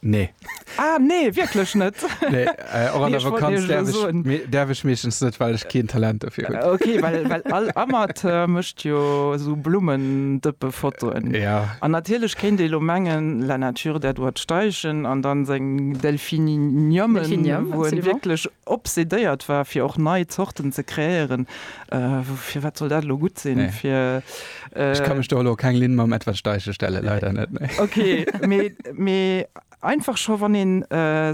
Nee. Ah nee, wierklech net? Nee, och an der Vakanz däerf ech meeschtens net, well ech keen Talent dofir hunn. Ok, well well all Amateur mécht jo esou Blummendëppefotoen. Ja. An natierlech kéint ee lo mengen, la nature der doit steigen an dann seng Delphiniumen, wou en wierklech obsedéiert war fir och nei Zorten ze kreéieren, firwat soll dat lo gutt sinn fir. Ech ka mech do elo keng Linn mam Edward Steichen stellen, leider net, nee. Ok, mee, mee einfach scho wann een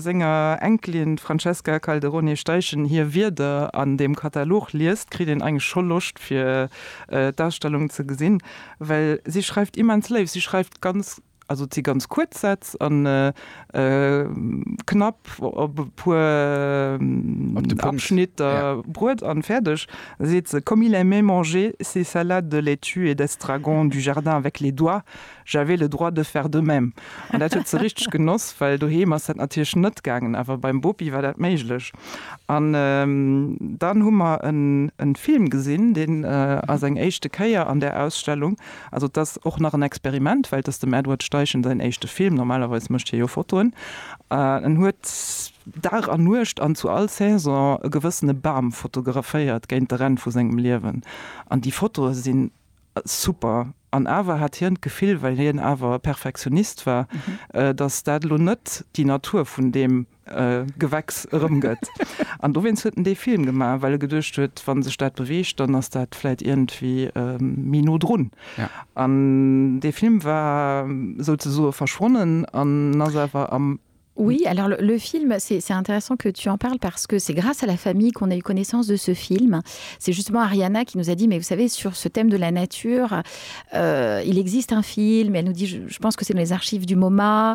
senger Enkelin, d'Francesca Calderone Steichen, hir Wierder an deem Katalog liest, kritt een eigentlech scho Loscht fir d'Ausstellung ze gesinn, well si schreift immens léif, si schreift ganz, Also et si ganz kuerz Sätz an knapp op e puer Abschnitter bruet an fäerdeg seet se, Comme il aimait manger ses salades de laitues et d'estragon du jardin avec les doigts, j'avais le droit de faire de même. An dat huet se richteg genoss, well doheem ass dat natierlech net gaangen, awer beim Bopi war dat méiglech. An dann hu mer en Film gesinn, deen ass eng éischte Kéier an där Ausstellung, Also et ass och nach en Experiment, well et ass dem Edward Steichen säin éischte Film, normalerweis mécht hie jo Fotoen. En huet Dag an Nuecht an zu all Saison e gewëssene Bam fotograféiert géint de Renn vu sengem Liewen. An déi Fotoe sinn super. An awer hat hien d'Gefill, well hien awer e Perfektionist war, datt dat elo net déi Natur vun deem Gewächs erëmgëtt. An dowéinst huet en dee Film gemaach, well e geduecht huet, wa sech dat beweegt, dann ass dat vläit iergendwéi méi no drun. An dee Film war souzesoe verschwonnen an ass awer am. Oui, alors le film, c'est intéressant que tu en parles parce que c'est grâce à la famille qu'on a eu connaissance de ce film. C'est justement Ariana qui nous a dit, mais vous savez, sur ce thème de la nature, euh, il existe un film, et elle nous dit, je pense que c'est dans les archives du MoMA,